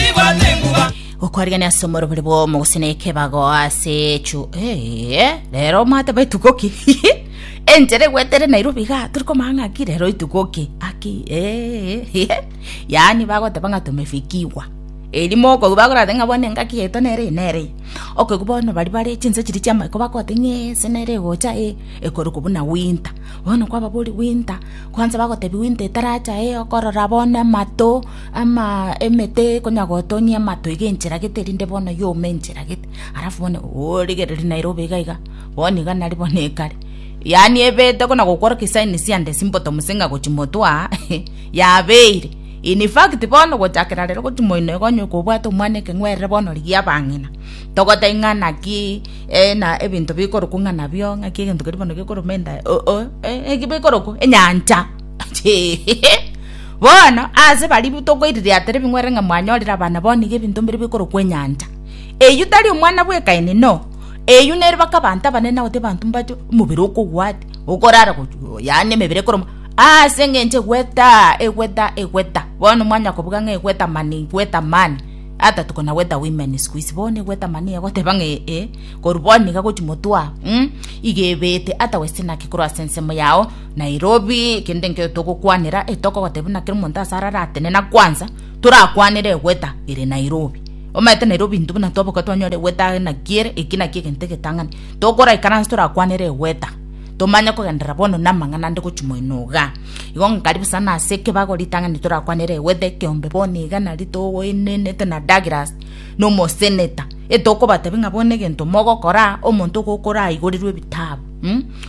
Nibwate enguba. gokwariania ase omorobori bw'omo gose na ekebago ase echu Ee, rero omate ba etuko ki enchera egwetere nairobi igaa tori komanya ng'a ki rero etuko ki aki ee yaani bagoteba ng'a tumefikiwa erio mokoigwa bakorate ng'a bono engaki yaito nere eye nere eye okoigwa bono baria bare chinse chiria chi'amaiko bagote ng'a ee ase nere egocha ee ekorokwa buna winter bono kwababoria winter kwanza bagotebi winter etaracha ee okorora bono amato Ama emete konya gotonia amatwe gencheragete erinde bono yome encheragete alafu bono origererie nairobi iga iga bono iga nari bono ekare yaani ebete konya gokworokia sign siande ase bottom gose ng'a gochia motwe aa yabeire infact bono gochakera rero gochia moino iga onye kobwate omwana ekeng'werere bono rigia abang'ina togotebia ng'a naki na ebinto bikorokwa ng'a nabio ng'aki egento keria bono gekoruma endae oh oh eki bikorokwa enyancha. bono ase baria tokoiriria tere bing'werere ng'a mwanyorire abana bao nigo ebinto mbire bikorokwa enyancha. Eyio tari omwana bw'ekaini, inoo, eyio nere baka abanto abanene nabotiga abanto mbache omobere okogwa ati, okorara gochia, yaani emebere ekorema, aase eng'encho egweta, egweta, egweta. Bono mwanya kobuga ng'a egweta mani, egweta mani, ata tuko na gweta women siku hizi, bono egweta mani egoteba ng'a eh eh, korwa bono iga gochia motwe aa, iga ebete, ata westina ki korwa ase ensemo yao. Nairobi, Kende nkio togokwanera tokogotebi na kera omonto ase arare atenena kwansa torakwanere egweta ere Nairobi. Omanyete Nairobi intwe buna twaboka twanyora egweta aye naki ere eki naki egento egetang'ani. Tokoraikara nse torakwanere egweta tomanye kogenderera bono na amang'ana ande gochia moino iga. Igo nkaribu sana ase ekebago ritang'ani torakwanere egweta ekeombe bono iga nari togoenenete na Douglas na omoseneta etokobatebi ng'a bono egento mogokora omonto ogo okoraigorirwe ebitabu.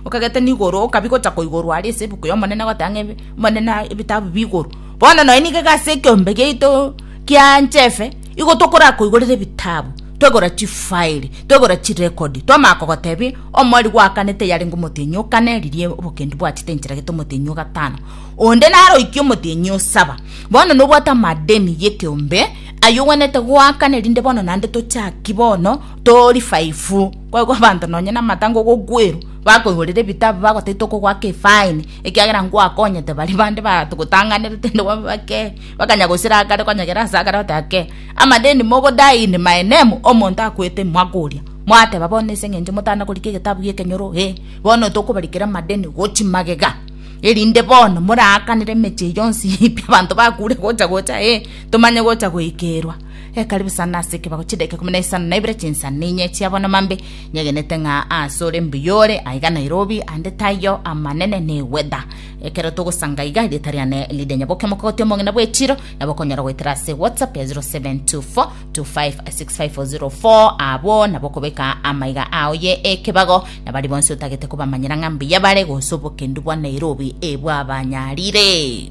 Okagete nigoro, okabia gocha koigorwa aria ase ebuku y'Omonene goteba ng'a Omonene aye ebitabu bigoro. Bono nonya nigo iga ase ekeombe giaito kia Nchefe, igo tokorakoigorera ebitabu, twegora chifaeli, twegora chirecord, twamanya kogotebia omorigwa oakane teyarenge omotienyi o kane, riria obokendu bwachete encheragete omotienyi o gatano, onde naro oikie omotienyi o saba. Bono nobwate amadeni y'ekeombe ayio ogwenerete goakana erinde bono naende tochaki bono to revive. Boigo abanto nonya namata ngogokwerwa, bakoigorera ebitabu, bagotaitwa okogoaka efaini, ekiagera ngwakonyete baria bande bagotang'anerete inde babe bakee, bakanya gosira akare konyegera ase akare bagoteba, Akee, amadeni mogodae in my name, omonto akwete mwaka oria, mwateba bono ase eng'encho motana korika egetabu gi'ekenyoro, ee, bono tokobarikera amadeni gochi magega, erinde bono moraakanere emechie yonsi pi abanto bakure gocha gocha, ee, tomanye gocha goikerwa. Ekaribu isano ase ekebago chidaika ikomi na isano na ibere chinsana inye chia bono mambe, nyegenete ng'a aase ore mbuya ore aiga Nairobi, ande taiyo amanene ne weather. Ekero togosanga iga, erieta riane rire Nyaboke Omokogoti Omong'ina bw'Echiiro, nabo okonyora goetera ase WhatsApp ya 0724256504 abwo nabo okobeka amaiga ao ye ekebago na baria bonsi otagete kobamanyera ng'a mbuya bare gose obokendu bwa Nairobi ebwabanyarire.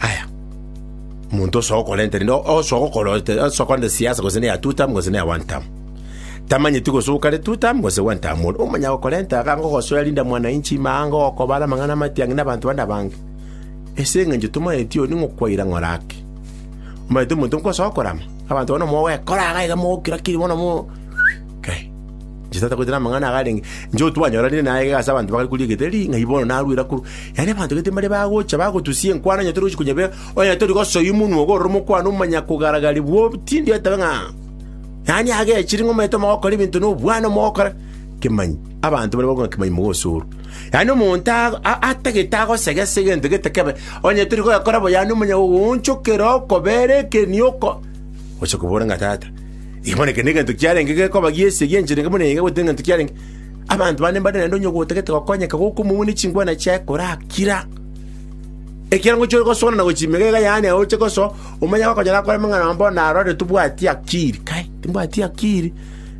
Aya, omonto osoa okorenta rende osoa gokora osoa korenta siasa gose neya two term gose neya one term tamanyeti gose okare two term gose one term bono omanya gokorenta iga ngogosoera Linda Mwananchi ime aa ngogokobara amang'ana amatiang'i na abanto bande abange ase eng'encho tomanyeti oyo ning'o kwaira ng'ora ake. Omanyete omonto nkosoa korama abanto bono mogwekora iga iga mogokira kiri bono mo kai. Jesu atagwete namang'ana agarenge, inche otwanyoranire naegega ase abanto bakare koria egetheri, ng'ai bono narwire akoro. Yaani abanto gete mbare bagocha bagotusia enkwano onye torochi konyebea, onye tori gosoa omonwa ogorora omokwana omanya kogaragaria bwo obutindi otabe ng'a yaani agechire ng'a omanyete omogokora ebinto na obwana omogokora kemanyi. Abanto bare bakorwa kemanyi mogosorwa. Yaani omonto a- a- atagete agosege ase egento gete kebe, onye tori kogekora bo yaani omanya gogoonchokera okobera ekeniogo, oche kobora ng'a tata, Ekiagera ekero egento kiarenge gekoba giesie gi'enchera buna iga goetera egento kiarenge, abanto bande mbare naende onye gotagete gokonyeka goka omobune chingwana chiaye korakira. Ekiagera ngochia ore gosoana na gochia emegega yaane aye oche gosoa, omanye agokonyora akore amang'ana amabo naro ore tobwati akiri. Kai, timbwati akiri?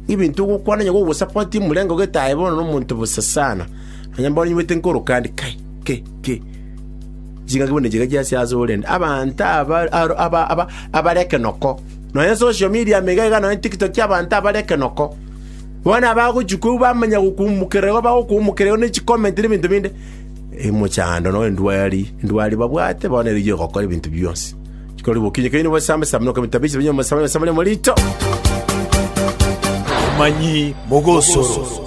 Ebinto ogokwana onye gogosapotia omorenge ogete aye bono nomonto bosa sana. Nonya bono nyibuete nkoroka ande, kai, ke, ke. Chingaki buna echi iga chiasia asore rende. Abanto aba aro aba aba abare ekenoko. nonya social media ime iga iga nonya tiktok y'abanto abare ekenoko. Bono abagochia koigwa bamanya gokumokererigwa bagokumokererigwa ne chicomment na ebinto binde, emochando na endwari endwari babwate bono erigiya egokora ebinto bionsi. Chikorwa bokinyi keino bosame same na okomenta bise bionsi bosame same na omorito. Abamanyi mogosoro.